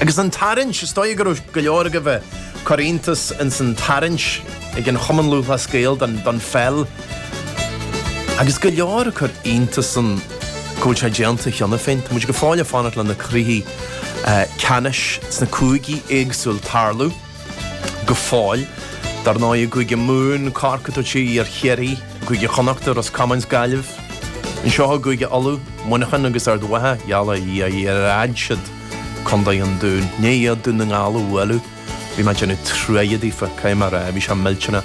Agus an tarraingt, is dóigh go raibh go leor agaibh ag cur iontas ins an tarraingt ag an Chumann Lúthchleas Gael don pheil. Agus go leor ag cur iontas an go bhfuil sé déanta cheana féin. Tá muid go fóill ag fanacht le na cluichí ceannais sna cúigí éagsúil tarlú. go fóill. Dar ndóigh i gCúige Mumhan, Corcaigh tabhairt aghaidh ar Chiarraí, i gCúige Chonnachta, Ros Comáin 's Gaillimh. Anseo i gCúige Uladh, Muineachán agus Ard Mhacha, gheall ar Dhia, Dhia, ar fhág siad Condae an Dúin i ndiaidh Dún na nGall a bhualadh. Bhí mé ag déanamh truaighe daofa, caithfidh mé a rá, bhí sé millteanach.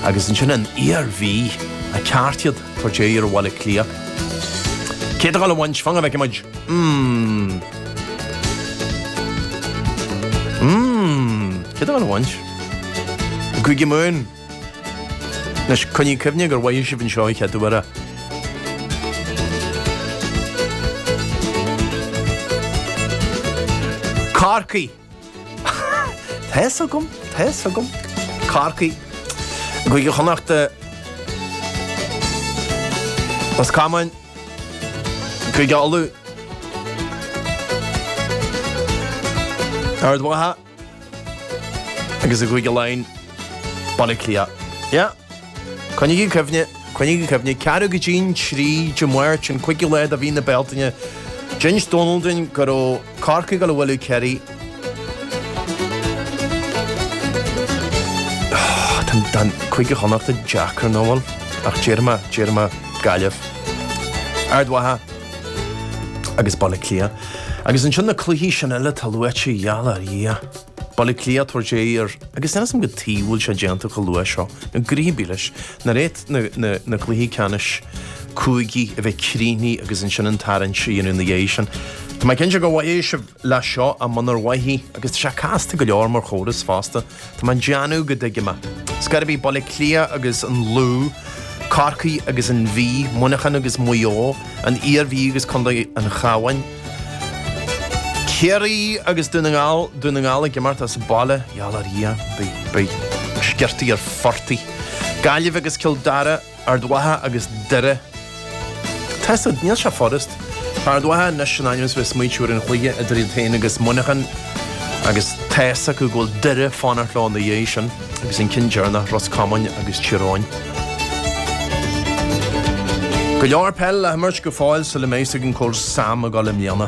Agus ansin an Iarmhí, a ceart iad, tabhairt aghaidh ar Bhaile Átha Cliath. Cé atá ag gabháil a bhaint, fan go bhfeicfidh muid. Hmm. Mmm! Cé atá ag gabháil a bhaint? I gCúige Mumhan! Anois, coinnigh cuimhne gur mhothaigh sibh anseo an chéad uair é. Corcaigh! Tá fhios agam, tá fhios agam. Corcaigh i gCúige Chonnacht Ros Comáin Cúige Uladh Ard Mhacha agus i gCúige Laighean Baile Átha Cliath. Yeah. Coinnígí cuimhne, coinnígí cuimhne, ceathrú go dtí'n trí Dé Máirt an cúigiú lá de mhí na Bealtaine. D'inis Dónal dúinn go raibh Corcaigh ag gabháil a bhualadh Kerry. Tá Cúige Chonnachta deacair, nach bhfuil? Ach déarfaidh mé, déarfaidh mé, Gaillimh, Ard Mhacha agus Baile Átha Cliath. Agus ansin na cluichí sin eile atá luaite a gheall ar Dhia. Baile Átha Cliath, tabhairt aghaidh ar, agus níl fhios agam cad chuige a bhfuil sé déanta chomh luath seo, nó go rith bí leis, nár fhéad, na, na cluichí ceannais cúigí a bheith críochnaithe agus ansin an tarraingt a dhéanamh ina dhiaidh sin. Tá mé cinnte gur mhothaigh sibh leath seo ach munar mhothaigh, agus tá sé casta go leor mar chóras fosta. Tá mé ag déanamh go dtuigim é. Ar scor ar bith Baile Átha Cliath agus an Lú, Corcaigh agus an Mhí, Muineachán agus Maigh Eo, an Iarmhí agus Contae an Chabháin, Ciarraí agus Dún na nGall, Dún na nGall ag imirt as baile gheall ar Dhia, beidh sciortaí ar phortaí. Gaillimh agus Cill Dara, Ard Mhacha agus Doire. Tá fhios agat, níl sé furast. Tá Ard Mhacha anois in ainm is a bheith ag smaointiú ar an chluiche idir iad féin agus Muineachán agus tá fhios acu go bhfuil Doire ag fanacht leo ina dhiaidh sin. agus an ceann deireanach Ros Comáin agus Tír Eoghain. Go leor peil le himirt go fóill sula mbeidh a fhios againn cá bhfuil Sam ag gabháil i mbliana.